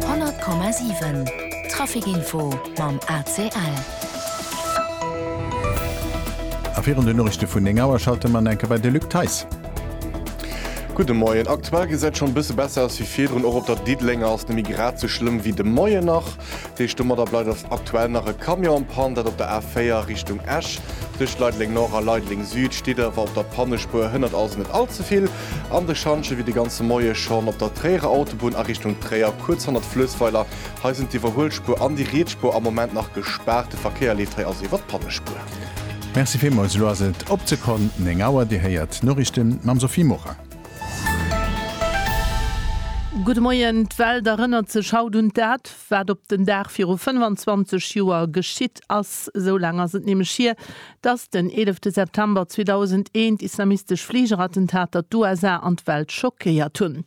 100,7 Traficinfo mam ACL. A virun den Noriichte vun 9 Auer schalte mer enke bei de Luc Theis. Gudde Moien. Aktuell gesäit et schonn e bësse besser aus wéi virdrun. Och op der Diddelenger ass nëmme grad esou schlëmm wéi de Moien nach. Deeg domadder bleift ass aktuell nach e Camion am Pann. Dat op der A4 Richtung Esch. Tëscht Leideleng Nord a Leideleng Süd steet et awer op der Pannespuer. Hënnert also net all ze vill. An de Schantjen wéi de ganze Moie schonn op der Tréierer Autobunn a Richtung Tréier, kuerz hannert Fluessweiler. Hei sinn d'Iwwerhuelspuer an déi Rietsspuer am Moment nach gespaart. De Verkéier leeft hei also iwwer d'Pannespur. Merci villmols, elo ass et op d'Sekonn 9 Auer, Dir héiert d'Noriichte mam Sophie Morang. Gudde Moien, D'Welt erënnert sech haut un dat, wat op den Dag viru 25 Joer geschitt ass. Esou laang ass et nämlech hier, Dass den eelefte September 2001 islamistesch Fligerattentater d'USA an d'Welt schockéiert hunn.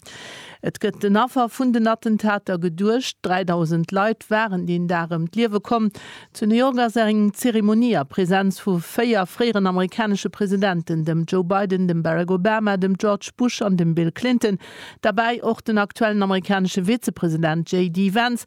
Et gëtt den Affer vun den Attentater geduecht. 3.000 Leit waren deen Dag ëm d'Liewe komm. Zu New York ass eng Zeremonie a Presenz vu véier fréieren amerikanesche Presidenten, dem Joe Biden, dem Barack Obama, dem George Bush an dem Bill Clinton, derbäi och den aktuellen amerikanesche Vizepresident JD Vance,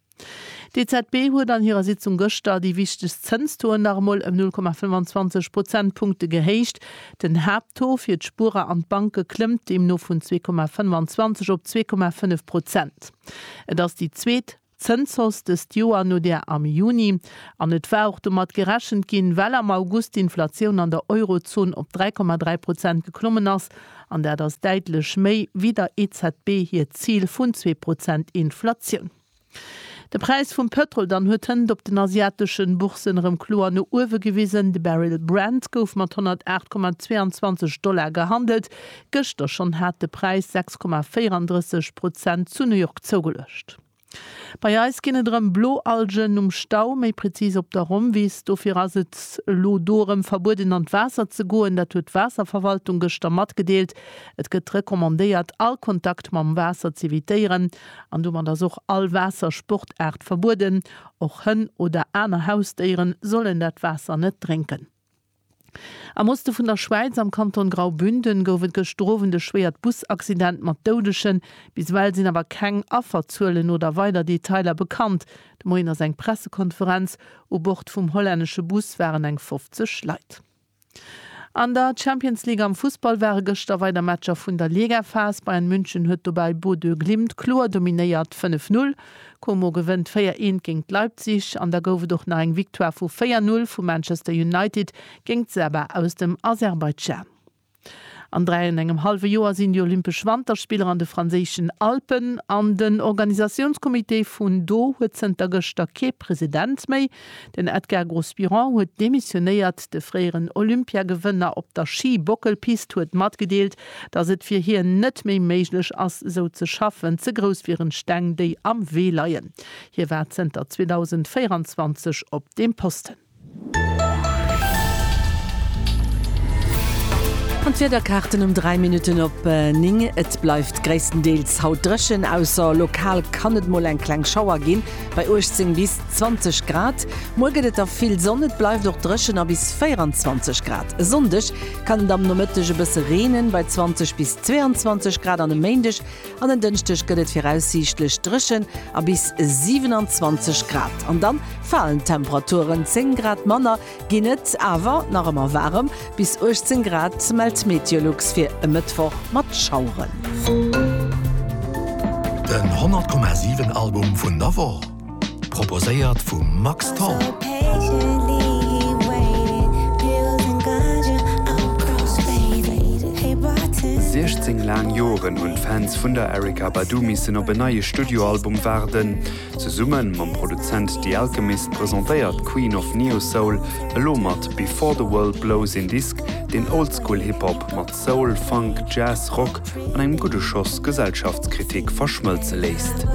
D'EZB huet an hirer Sitzung gëschter déi wichtegst Zënstoen nach emol ëm 0,25 Prozentpunkte gehéicht. Den Haapttaux fir d'Spuerer an d'Banke klëmmt deemno vun 2,25 op 2,5 Prozent. Et ass déi zweet Zënshausse dëst Joer no där am Juni an et war och domat gerechent ginn, well am August d'Inflatioun an der Eurozon op 3,3 Prozent geklommen ass An dat ass däitlech méi wéi der EZB hiert Zil vun zwee Prozent Inflatioun. De Präis vum Pëtrol dann huet hënt op den asiateschen Bourssen erëm kloer no uewe gewisen. De Barrel Brent gouf mat 108,22 Dollar gehandelt. Gëschter schonn hat de Präis 6,34 Prozent zu New York zougeluecht. Bei eis ginn et erëm blo Algen um Stau, méi prezis op der Rommwiss. Dofir ass et elo do erëm verbueden an d'Waasser ze goen. Dat huet d'Waasserverwaltung gëschter matgedeelt. Et gëtt recommandéiert all Kontakt mam Waasser z'evitéieren an domat ass och all Waassersportaart verbueden. Och Hënn oder aner Hausdéiere sollen dat Waasser net drénken. Am Oste vun der Schwäiz, am Kanton Graubünden, gouf et gëschter Owend e schwéiert Busaccident mat Doudegen. Bis ewell sinn awer keng Afferzuelen oder weider Detailer bekannt. De Moien ass eng Pressekonferenz. U Bord vum hollännesche Bus waren eng 50 Leit. An der Champions League am Fussball ware gëschter weider Matcher vun der Ligaphas. Bayern München huet dobäi Bodø Glimt kloer dominéiert, 5, 0. Como gewënnt 4 Eent géingt Leipzig an da gouf et och nach eng Victoire vu 4 Null vu Manchester United géingt Saba aus dem Aserbaidschan. An 3 an engem hallwe Joer sinn déi Olympesch Wanterspiller an de franséischen Alpen an den Organisatiounscomité vun do huet zënter gëschter kee President méi. Den Edgar Gros-Biron huet demissionéiert. De fréieren Olympiagewënner op der Schi-Bockelpist huet matgedeelt, datt et fir hien net méi méiglech ass, esou ze schaffen. Ze grouss wieren d'Steng, déi am Wee leien. Hie war zënter 2024 op deem Posten. An d'Wiederkaarten um 3 Minutten op 9, Et bleift gréisstendeels haut dréchen, ausser lokal kann et mol eng kleng Schauer ginn. Bei 18 bis 20 Grad. Muer gëtt et da vill Sonn, et bleift och dréchen a bis 24 Grad. E Sonndeg kann et am Nomëtteg e bësse reenen, bei 20 bis 22 Grad an e Méindeg an en Dënschdeg gëtt et viraussiichtlech dréchen a bis 27 Grad. An dann falen d'Temperaturen, 10 Grad manner Ginn et awer nach ëmmer waarem, bis 18 Grad mellt Meteolux fir e Mëttwoch mat Schaueren. Den 100,7 Album vun der Woch, proposéiert vum Max Tholl. Siechzéng laang Joren hunn d'Fans vun der Erykah Badu missen op en neie Studioalbum waarden. Zesumme mam Produzent The Alchemist presentéiert d'Queen of Neo-Soul elo mat Before the World Blows een Disk, deen Oldschool Hip-Hop mat Soul, Funk, Jazz, Rock an engem gudde Schoss Gesellschaftskritik verschmëlze léisst.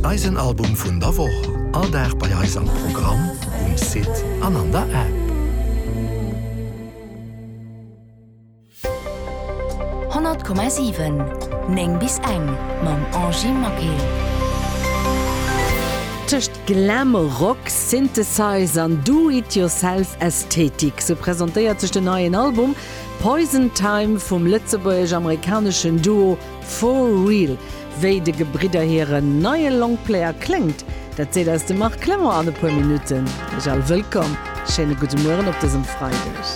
Eisen Album vun der Woch, all Dag bei eis am Programm, um Site an an der App. 100,7 9 bis eng mam Angie Maquet. Tëscht Glam Rock, Synthesize an Do It Yourself Ästhetik, sou presentéiert sech den neien Album Poison Time vum lëtzebuergesch-amerikaneschen Duo For Real. Wéi de Gebridder hiren neie Longplayer kléngt, dat seet eis de Marc Clement an e puer Minutten. Iech all wëllkomm, schéine gudde Mueren op dësem Freideg.